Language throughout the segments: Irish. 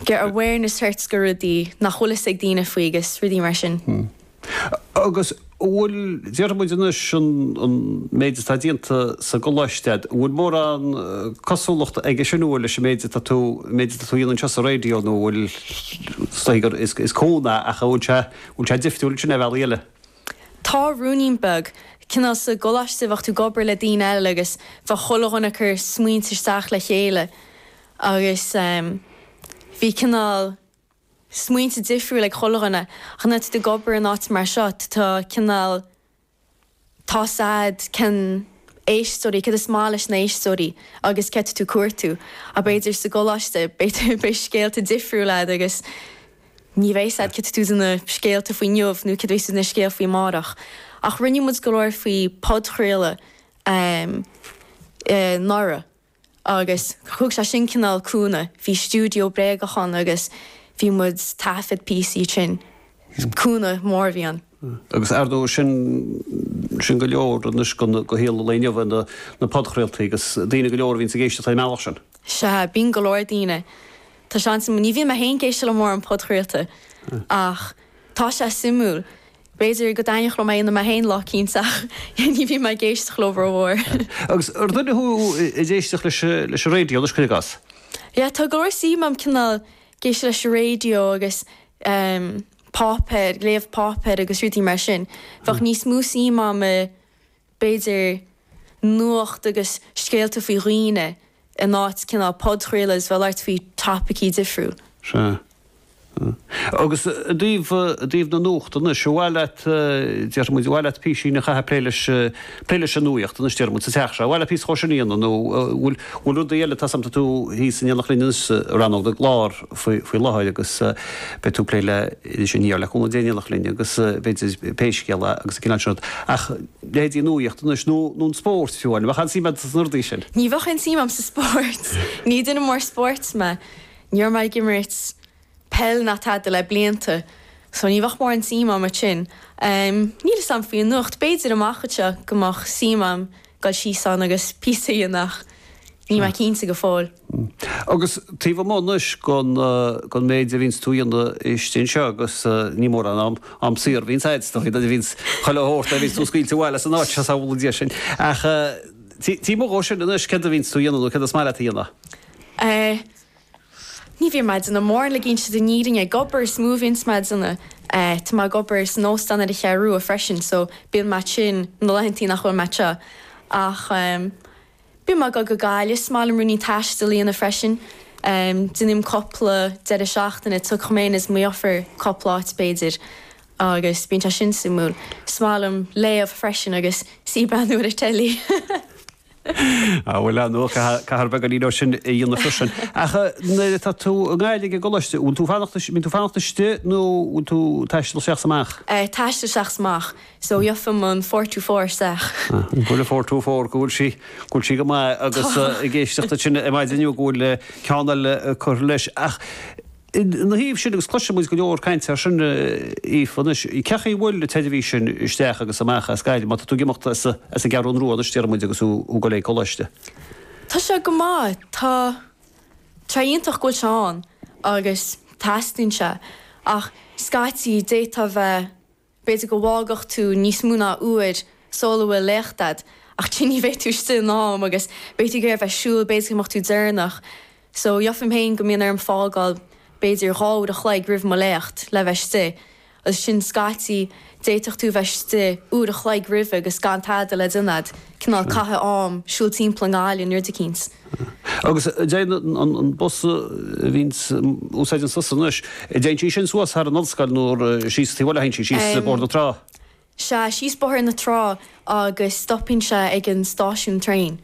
get awareness thart go rudaí nach bhfuil fhios ag daoine faoi agus rudaí mar sin. Hmm. Agus an bhfuil, déarfaidh muid anois an an méid atá déanta sa gcoláiste a'd, an bhfuil mórán cosúlachta aige sin an bhfuil leis an méid atá tú, méid atá tú a dhéanamh anseo sa raidió nó an bhfuil, is dóigh gur is is cúnamh é ach an bhfuil sé, an bhfuil sé difriúil ansin ar bhealaí eile? Tá ruainnín beag. Cineál sa gcoláiste bheadh tú ag obair le daoine eile agus bheadh chuile dhuine ag cur smaointe isteach le chéile. Agus bhí cineál smaointe difriúil ag chuile dhuine, ach nuair atá tú ag obair in áit mar seo, tá cineál, tá 'fhios a'd cén éisteoirí, céard is maith leis na éisteoirí agus céard atá tú ag cuartú. Ach b'fhéidir sa gcoláiste, b'fhéidir, beidh scéalta difriúil a'd agus ní bheidh 'fhios a'd céard atá tú ag déanamh scéalta faoi inniu nó céard a bheidh tú ag déanamh scéal faoi amárach. Ach rinne muid go leor faoi podchraoladh anuraidh. Agus thug sé sin cineál cúnamh, bhí stiúideo bréagach ann agus bhí muid ag taifead píosaí istigh ann. Cúnamh mór a bhí ann. Agus ar ndóigh sin, sin go leor anois go shaol an lae inniu na podchraoltaí agus daoine go leor a bhíonns ag éisteacht ar an mbealach sin. Sea, bíonn go leor daoine. Tá sé an-suimiúil, ní bhíonn mé féin ag éisteacht le mórán podchraolta ach tá sé suimiúil B'fhéidir go dtaitneodh liom é a dhéanamh mé féin lá eicínt, ach ní bhíonn mé ag éisteacht leo rómhór. Agus ar dhuine thú ag éisteacht leis an raidió anois, cuir i gcás? Yeah, tá go leor suim agam cineál ag éisteacht leis an raidió agus páipéar, ag léamh páipéar agus rudaí mar sin. Bheadh níos mó suim agam i b'fhéidir, nuacht agus scéalta faoi dhaoine in áit cineál podchraoladh a bheadh ag labhairt faoi topaicí difriúla. Sea. Agus i dtaobh, i dtaobh na nuachta anois, ar mhaith leat, déarfaidh muid, ar mhaith leat písín a chaitheamh, plé leis, plé leis an nuaíocht anois déarfaidh muid sa teach seo, ar mhaith leat píosa dhó sin a dhéanamh nó an bhfuil, an bhfuil rudaí eile, tá 'fhios a'm tá tú thíos in éineacht linn anois sa rannóg na gclár? faoi láthair agus beidh tú ag plé le Iris Aniar, le cúnamh Dé, in éineacht linn agus b'fhéidir Pé Scéal É agus an cineál sin rud ach leithéidí an nuaíocht anois nó an spóirt fiú amháin, an mbeadh aon suim a'd sna rudaí sin? Ní bheadh aon suim a'm sa spóirt, ní duine mór spóirt mé, ní raibh mé ag imirt peil ná tada le blianta so ní bheadh mórán suim a'm ansin. Níl 'fhios a'm faoi an nuacht, b'fhéidir amach anseo go mbeadh suim a'm dul síos ann agus píosa a dhéanamh ach níl mé cinnte go fóill. Hm. Agus taobh amuigh anois gon, gon méid a bhíonns tú a dhéanamh istigh anseo agus ní mórán am, am saor a bhíonns a'd, is dóigh, a bhíonns chuile shórt a bhíonns tú scaoilte abhaile as an áit seo, sábhála Dia sinn. Ach taobh, taobh amuigh dhó sin anois céard a bhíonns tú a dhéanamh nó céard is maith leat a dhéanamh? Eh. Ní bhíonn mé ag déanamh mórán eile, déanta na fírinne, ag obair is mó a bhíonns mé a dhéanamh. Eh, tá mé ag obair san óstán ar an gCeathrú Rua freisin so bíonn mé istigh ann na laethantaí nach bhfuil mé anseo. Ach ehm. Bím ag dul go Gaillimh, is maith liom ruainnín taistil a dhéanamh freisin. Déanaim cúpla deireadh seachtaine, tiocfaidh mé féin is mo dheirfiúr cúpla áit b'fhéidir, agus bíonn sé sin suimiúil. Is maith liom léamh freisin agus suí breathnú ar an teilí. Ah bhuel, ah no, caithfear beagáinín dhó sin a dhéanamh freisin. Ach nuair atá tú i nGaillimh ag an gcoláiste, bhfuil tú fanacht, bíonn tú fanacht istigh nó bhfuil tú taisteal isteach 's amach? Eh taisteal isteach 's amach. So faighim an four two four isteach. An bhfuil an four two four, go bhfuil sí, go bhfuil sí go maith agus ag éisteacht duit sin ar maidin inniu go bhfuil ceann eile curtha leis. Ach ina thaobh sin agus cloiseann muid go leor cainte ar sin, Aoife, anois, cé chaoi a bhfuil an tseirbhís sin isteach agus amach as Gaillimh, má tá tú ag imeacht as an gCeathrún Rua anois, déarfaidh muid, agus ag dul ag coláiste? Tá sé go maith, tá sé iontach go bhfuil sé ann agus teastaíonn sé ach scaití d'fhéadfadh a bheith, B'fhéidir go bhfágfadh tú níos mó ná uair sul a bhfuil léacht agat, ach still ní bheidh tú istigh in am agus beidh tú ag iarraidh a bheith ag siúl, b'fhéidir go mbeadh tú deireanach. So, gheofaim féin go mbíonn orm fágáil b'fhéidir dhá uair a chloig roimh mo léacht le bheith istigh. Agus ansin scaití d'fhéadfadh tú a bheith istigh uair a chloig roimhe agus gan tada le déanamh agat, cineál caitheamh am siúl timpeall an bhaile nó rud eicínt. Agus dtéann an bus a bhíonns úsáideanns tusa anois, dtéann sí sin suas thar an ollscoil nó síos taobh abhaile, thagann sí síos Bóthar na Trá. Sea, síos Bóthar na Trá agus stopann sé ag an stáisiún traein.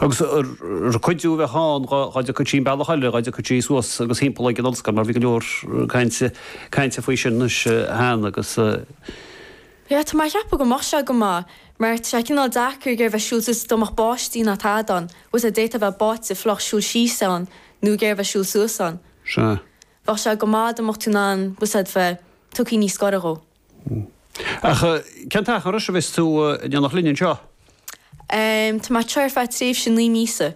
Agus ar cuidiú a bheadh ann, dhá dtiocfadh sí an bealach eile, dhá dtiocfadh sí suas agus thimpeall ag an ollscoil mar bhí go leor cainte faoi sin anois cheana agus. Sea, tá mé ag ceapadh go mbeadh sé go maith, mar tá sé cineál deacair ag iarraidh bheith siúl suas dá mbeadh báisteach ná tada ann, agus é d'fhéadfá bheith báite fliuch siúl síos ann nó ag iarraidh bheith siúl suas ann. Sea. Bheadh sé go maith dá mbeadh tú in ann, agus é bheith tugthaí níos gaire dhó. Ach cén t-achar anois a bheas tú ag déanamh linn anseo? Em, tá mé anseo ar feadh tréimhse naoi míosa.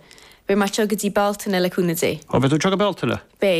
Beidh mé anseo go dtí Bealtaine, le cúnamh Dé. Ó, beidh tú anseo go Bealtaine? Beidh.